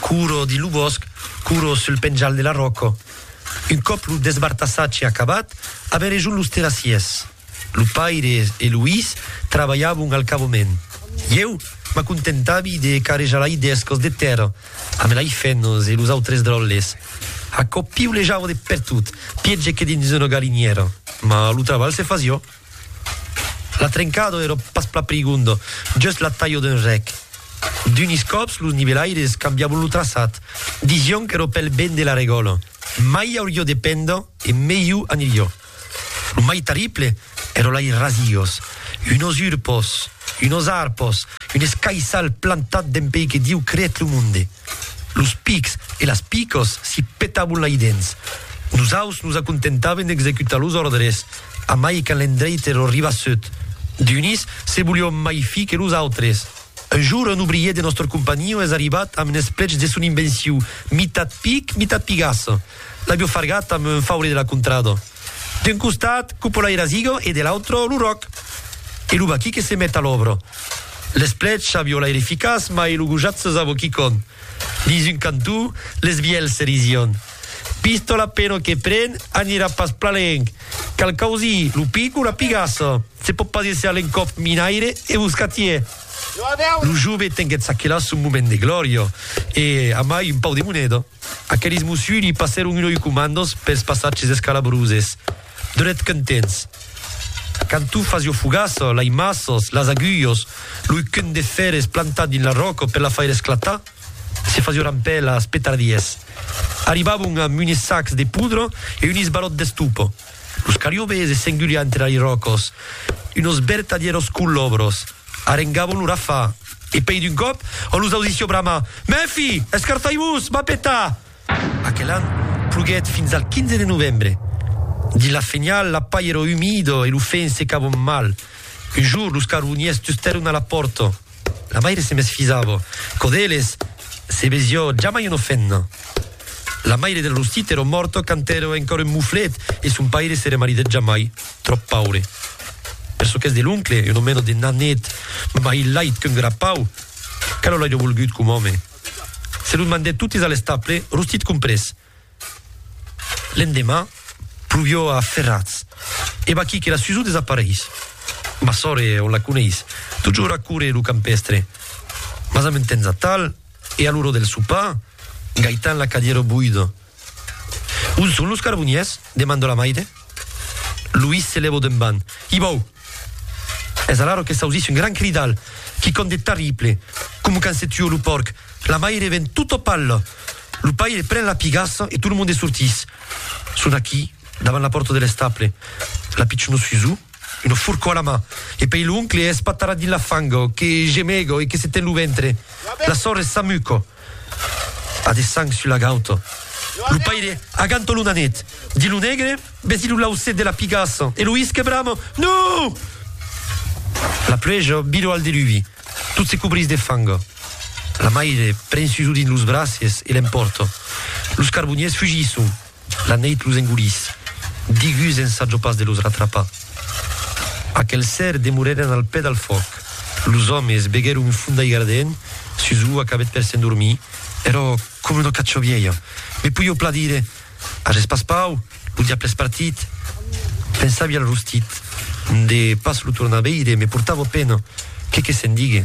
Couro dins lo bòsc, couro sul penjal de la ròca. Un còp lo desbartassatge acabat, avèn rejunt los terrassiers. Lo paire e lo his trabalhavon al cavament. Ieu m'acontentavi de carrejar lai dèscos de tèrra amb lai fènos e los autres dròlles. Aquò piulejava de pertot, pièger que dins una galinièra, mas lo trabalh se fasiá. La trencado èra pas plan prigonda, just la talha d'un rèc. D'unis còps los nivelaires cambiavon lo traçat, disián qu'èra pel ben de la regòla, mai auriá de penda e melhor aniriá. Lo mai terrible èra lei rasiós, unos urpos, unos arpos, un escaissal plantat dempei que Dieu creèt lo monde. Los pics e las picas s'i petavon lei dens. Nosaus nos acontentaven d'executar los òrdres. Amai quand l'endreit ero ribassut d'unis, se volion mai fi que los autres. Un jour, un obrier de nòstre companhion es arribat amb es plechs de son invenciu, mitat pic, mitat pigassa. L'avio fargat amb un faure de la contrada. D'un costat, cupola e rasiga e de l'autre, lo ròc. E lo vaquí que se met a l'òbra. L'es plechs avio l'aire eficaç, mai lo gojat se sabo quicon. Dins un cantó, les vielhs se risian. Pistola pena que pren, anirà pas plalenc. Cal causir lo pic o la pigassa. Se pòt pas èsser l'encòp minaire e boscatier. Lo jove tenguèt s'aquela son moment de glòria e, amai un pau de moneda, aquelis mossuds li passèron un oi comandos pels passatges escalabroses. Donèt contents. Quand tu fas ua fogassa, l'aimassas, las agulhas, l'oi qu'un de fèrres plantat dins la ròca per la faire esclatar, Se fasuran pè las petardies. Arribavon amb unes sacs de poudra e unes balòts d'estopa. Los cariobes e s'engulian entre ali ròcos unos bertadièros colòbros. Arengavon lo rafà e pei d'un còp on los ausissió bramar, Mèfi! Escarfai-vos! M'a petar! Aquel an, ploguèt fins al 15 de novembre. Dins la fenial, la pair era umida e lo fèn secavon mal. Un jorn, los carboniers tustèron a la pòrta. La maire se mesfisava. Quò d'eles, se vesió jamai una femna. La maire del Rostit èra mòrta quand èra encòra un moflet e son paire s'èra maridèt jamai, tròp paure. Per çò qu'es de l'oncle, una mena de nanet, mai lait qu'un grapau, que lo l'airia volgut com òme. Se lo demandèt totes a l'estaple, Rostit comprés. L'endemà, pluvió a ferrats. E vaquí que la Susù desapareis. Ma sòre, on la coneis, totjorn a córrer lo campèstre. Mas amb un temps atal, e a l'ora del sopar, Gaitan la cadièro boida. On son los carboniers? demanda la maire. Luís se lèvo d'un ban. Ibau! Es alaro que s'ausís un gran cridal, quicòm de tarrible, coma quand se tua lo pòrc, la maire ven tot au pal, lo paire pren la pigassa e tot lo monde sortís. Son aquí, davant la pòrta de l'estable, la pichona Suzu, una forcò a la man, e pei l'oncle espatarrat dins la fanga, que gemega e que se ten lo ventre, la sòrre s'amuca. A de sang sul lagaut. Lo paire aganta lo nanet dins lo negre, vesi lo lauset de la pigassa e lo isque brama, Non! La pluèja vira al deluvi. Tot se cobrís de fang. La maire pren Suso dins los braces e l'empòrta. Los carboniers fugisson. La neit los engolís. Digus ensajo pas de los ratrapar. Aquel ser demorèren al pè dal fòc. Los òmes beguèron un fum d'aiga ardent sus ua qu'avèt per s'endormir. Èrò coma una cacho vièlha. Me poieu plan dire, Aja es pas pau, lo diable es partit. Pensàvi al rostit. De pas lo tornar veire me portava pena. Qué que se'n digue?